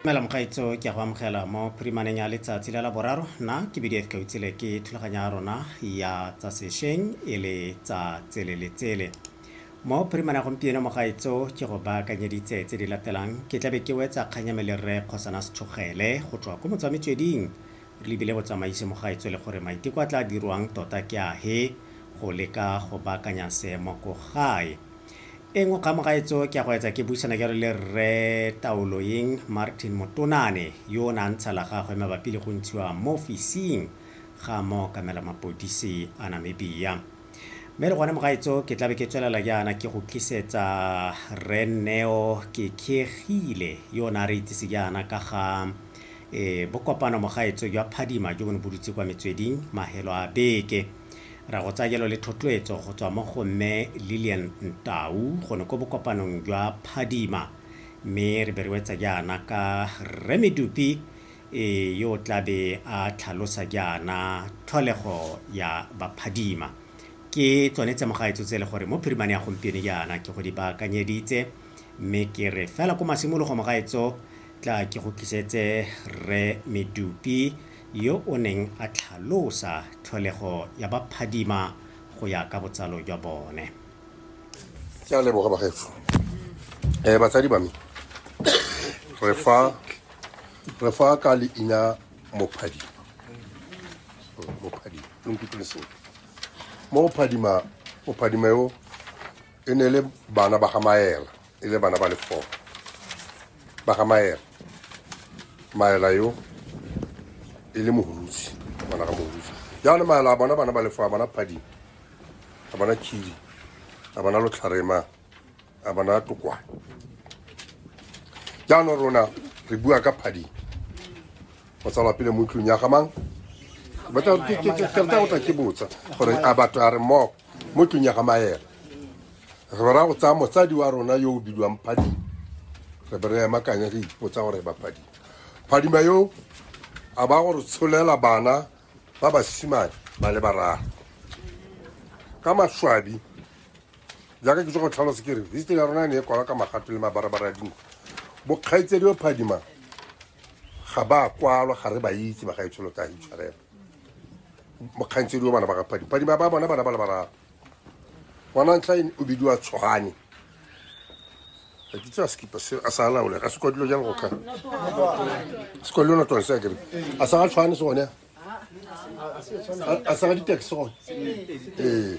mela mokgaitso ke a go amogela mo phirimaneng ya letsatsi la la boraro nna ke bdf ka utsile ke thulaganyo ya rona ya tsa sešweng e le tsa tsele le tsele mo phirimane ya gompieno mogaitso ke go baakanyeditse tse di latelang ke tlabe ke wetsa kganyame le rre kgosana sethogele go tswa ko motswa metsweding Re lebile botsamaisi mo ga e tswele gore maiteko a tla dirwang tota ke ahe go leka go baakanya seemo ko gae. E nngwe kgang mo ga etso ke ya go etsa ke buisana jalo le Rre Taoloeng Martin Motonane yo o ne a ntsha la gagwe mabapi le go ntshiwa mo ofising ga mookamela mapodisi a Namibia. Mme le gone mo ga etso ke tlabe ke tswelela jaana ke go tlisetsa Rre Neo Kekegile yo o ne a re itsise jaana ka ga Ee, bo kopano mogaetso jwa phadima jo bo ne bo dutse kwa metsweding mahelo a beke. Ra go tsayelo le thotloetso go tswa mo go Mme Lillian Ntau go ne ko bokopanong jwa phadima. Mme re be re wetsa jaana ka Rre Medupi e yo o tla be a tlhalosa jaana tlholego ya baphadima. Ke tsone tse mogaetso tse le gore mo phirimane ya gompieno jaana ke go di baakanyeditse mme ke re fela ko masimologo mogaetso Tla ke go tlisetse Rre Medupi yo o neng a tlhalosa tlholego ya ba phadima go ya ka botsalo jwa bone. Ke a leboga bagaetsho. Eh batsadi ba me re fa re fa ka leina Mophadima. Mophadima lo nkutlwile seo. Mo Mophadima Mophadima yo e ne le bana ba ga Maela. e le bana ba le four ba ga maela maela yo e le mogolutsi bana ga mogolutsi jaanong maela a bona bana ba le four a bona phadi a bona khidi a bona lotlharema a bona tokwa jaanong rona re bua ka phadi go tsalwa pele mo tlong ya gamang batla ke botsa gore a batho a re moko mo tlong ya ga maela re bera go tsaya motsadi wa rona yo o bidiwang phadima re be re emakanya re ipotsa gore ba phadima phadima yo a ba gore tsholela bana ba basimane ba le bararo ka maswabi jaaka ke tswa go tlhalosa ke re history ya rona e ne e kwala ka magato le mabarabara a dinko bokgaitsedi o phadima ga ba kwalwa ga re ba itse bagaetsholo ka itshwarela mokgantsedi wa bana ba ga phadi phadi ba bona bana ba le bararo ngwana ntlha o bidiwa tshogane ga ke tsaya sekipa se a sa laole ga se kwa dilo jang go kga se kwa dilo natone se a kere a sa ga tshwane se gone a sa ga ditaxi gone ee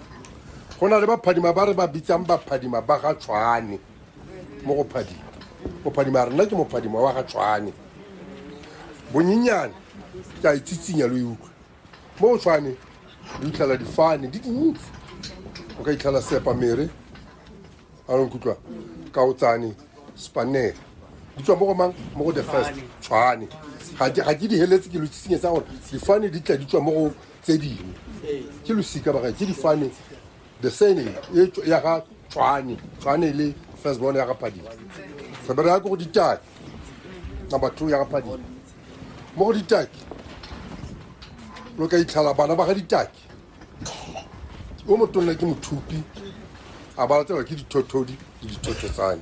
go na le baphadima ba re ba bitsang baphadima ba ga tshwane mo go phadima mophadima rena ke mophadima wa ga tshwane bonyenyane ke a itsitsinya lo e utlwa mo go tshwane lo itlhela difane di dintsi o ka itlhela sepa mere a leng kutlwa ka o tsane spanere di tswa mo go mang mo go the first tshwane ga ke di heletse ke lo itsitsinyetsa gore difane di tla di tswa mo go tse dingwe ke losika ba ke difane the sene e ya ga tshwane tshwane le first born ya ga phadi re be re ya ko go ditaki number two ya ga phadi mo go ditaki lo ka itlhala bana ba ga ditaki o motonna ke mothupi a ba latsewa ke dithothodi le dithothetsane